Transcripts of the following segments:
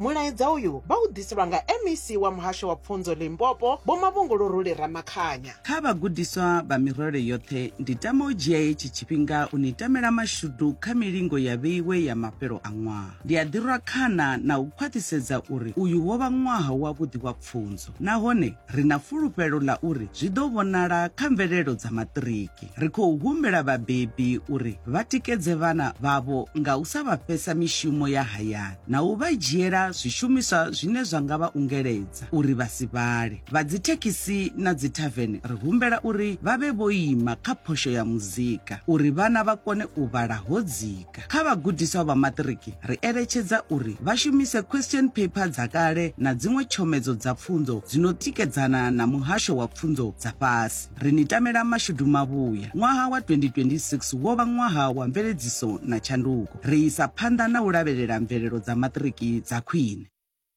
Mulaedza uyu vha u ḓiselwa nga MEC wa Muhasho wa Pfunzo Limpopo, Vho Mavhunguluruli Ramakhanya. Kha vhagudiswa vha mirole yoṱhe, ndi tama u dzhia hetshi tshifhinga u ni tamela mashudu kha milingo ya vheiwe ya mafhelo a ṅwaha. Ndi a ḓi rwa khana na u khwaṱhisedza uri uyu wo vha ṅwaha wavhuḓi wa. pfunzo nahone ri na fulufhelo ḽa uri zwi ḓo vhonala kha mvelelo dza maṱiriki. Ri khou humbela vhabebi uri vha tikedze vhana vhavho nga u sa vha fhesa mishumo ya hayani na u vha dzhiela zwishumiswa zwine zwa nga vha ungeledza uri vha si vhale. Vha dzithekhisi na dzithavene ri humbela uri vha vhe vho ima kha phosho ya muzika uri vhana vha kone u vhala ho dzika. Kha vhagudiswa vha maṱiriki, ri eletshedza uri vha shumise question paper dza kale na dziṅwe tshomedzo dza pfunzo dzi no tikedzana na muhasho wa pfunzo dza fhasi. Ri ni tamela mashudu mavhuya. Ṅwaha wa 2026 wo vha ṅwaha wa mveledziso na tshanduko. Ri isa phanḓa na u lavhelela mvelelo dza maṱiriki dza khwine.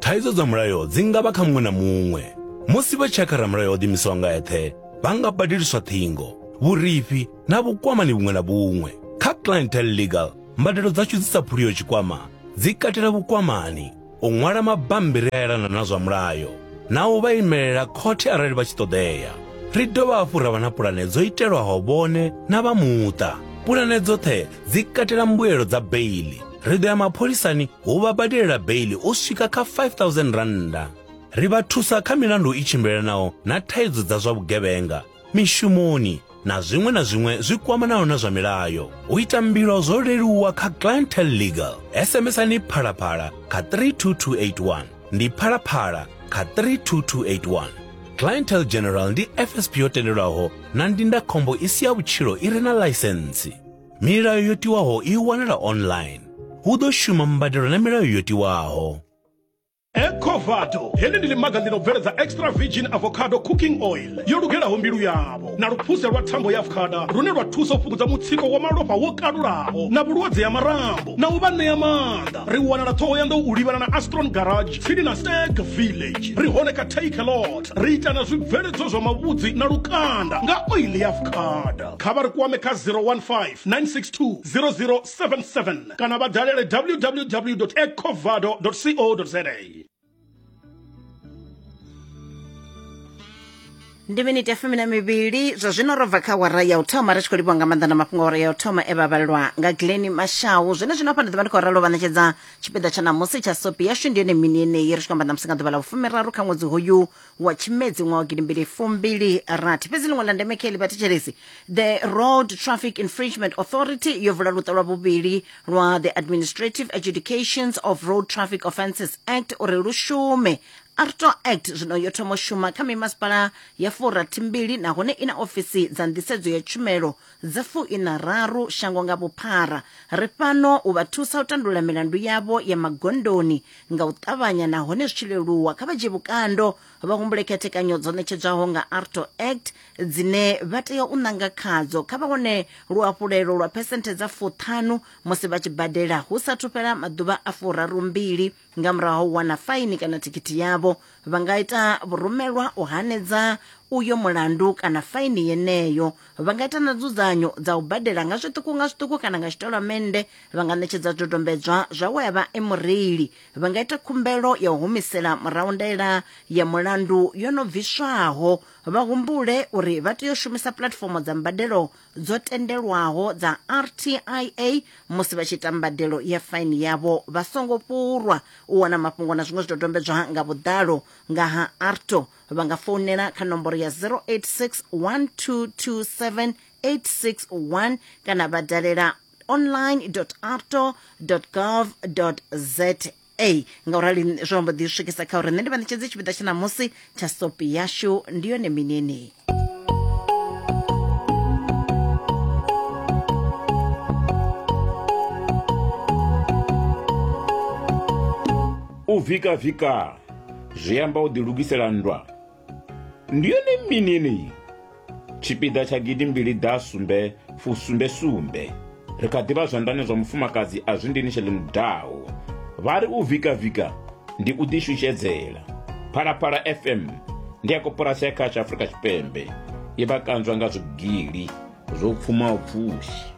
Thaidzo dza mulayo dzi nga vha kha muṅwe na muṅwe. Musi vha tshakha ramulayo o ḓimisaho nga eṱhe, vha nga badeliswa ṱhingo, vhurifhi na vhukwamani vhuṅwe na vhuṅwe. Kha Clientele Legal, mbadelo dzashu dzi sa phuliho tshikwama dzi katela vhukwamani, u ṅwala mabammbiri a elana na zwa mulayo na u vha imelela khothe arali vha tshi ṱoḓea. Ri dovha hafhu ra vha na pulane dzo itelwaho vhone na vha muṱa. Pulane dzoṱhe dzi katela mbuelo dza beili ri ḓo ya mapholisani hu vha badelela beili u swika kha 5000 rannda ri vha thusa kha milandu i tshimbilelanaho na thaidzo dza zwa vhugevhenga mishumoni na zwiṅwe na zwiṅwe zwi kwamanaho na zwa milayo u ita mbilo zwo leluwa kha clientel legal sms-ani phalaphala kha 32281 ndi phalaphala kha 32281 clientel general ndi fsp yo tendelwaho na ndindakhombo i si ya vhutshilo i re na ḽaisentsi Milayo yo tiwaho i wanala online. Hu ḓo shuma mbadelo na milayo yo tiwaho. Ecovado heḽi ndi ḽimaga ḽi no bveledza extra virgin avocado cooking oil yo lugelaho mbilu yavho na luphuse lwa thambo ya avocada lune lwa thusa u fhungudza mutsiko wa malofha wo kalulaho na vhulwadze ha marambo na u vha ṋea maanḓa ri wanala ṱhohoyanḓou u livhana na astron garage tsini na stag village ri hone kha take a lot ri ita na zwibveledzwa zwa mavhudzi na lukanda nga oil ya avocada Kha vha ri kwame kha 015 962 0077 kana vha dalele www.ecovado.co.za. ndi miniti ya fumi na mivhili zwa zwino ro bva kha wara ya u thoma ri tshi khou livhiwa nga maanḓa na mafhungo wara ya u thoma e vha vhalelwa nga glen mashau zwine zwino hafha ndi ḓivha ndi khou ralo vha ṋetshedza tshipiḓa tsha ṋamusi tsha sopi yashu ndi yone mini yeneyi ri tshi khou amba ṋamusi nga ḓuvha ḽa vhufumiraru kha ṅwedzi hoyu wa tshimedzi ṅwaha wa gidimbili fumbili rathi fhedzi ḽiṅwe ḽa ndeme kha ḽi vhathetshelesi the road traffic infringement authority yo vula luṱa lwa vhuvhili lwa the administrative adjudications of road traffic offences act uri lu shume arto act zwino yo thoma u shuma kha mimasipala ya furathimbili nahone i na ofisi dza nḓisedzo ya tshumelo dza fuinararu shango nga vhuphara ri fhano u vha thusa u tandulula milandu yavho ya magondoni nga u ṱavhanya nahone zwi tshi leluwa kha vha dzhie vhukando vha humbule khethekanyo dzo ṋetshedzwaho nga arto act dzine vha tea u ṋanga khadzo kha vha wane luhafhulelo lwa phesenthe dza fuṱhanu musi vha tshi badela hu sathu fhela maḓuvha a furarumbili nga murahu ha u wana faini kana thikhithi yavho vha nga ita vhurumelwa u hanedza uyo mulandu kana faini yeneyo vha nga ita na dzudzanyo dza u badela nga zwiṱuku nga zwiṱuku kana nga tshitolamennde vha nga ṋetshedza dodombedzwa zwa we a vha e mureili vha nga ita khumbelo ya u humisela murahu ndaela ya mulandu yo no bviswaho vha humbule uri vha tea u shumisa puḽatifomo dza mbadelo dzo tendelwaho dza rtia musi vha tshi ita mbadelo ya faini yavho vha songo fhurwa u wana mafhungo na zwiṅwe zwidodombedzwa nga vhuḓalo nga ha arto vha nga founela kha nomboro ya 086 1227 861 kana vha dalela online arto gov za ei ngaurali zwo amba ḓi swikisa kha uri nṋe ndi vha ṋetshedze tshipiḓa tsha ṋamusi tsha sopi yashu ndi yone mini yeneyi u vikavika zwi amba u ḓilugisela nndwa Ndi yone mini yeneyi? Tshipiḓa tsha gidi mbili ḓa sumbe fu sumbe sumbe. Ri kha ḓivha zwanḓani zwa mufumakadzi a zwi ndini shele mudaho. Vha ri u vika vika ndi u ḓi shushedzela. Phalaphala FM ndi ya koporasi ya kha tsha Afrika Tshipembe. I vha kanzwa nga zwigili zwo pfumaho pfushi.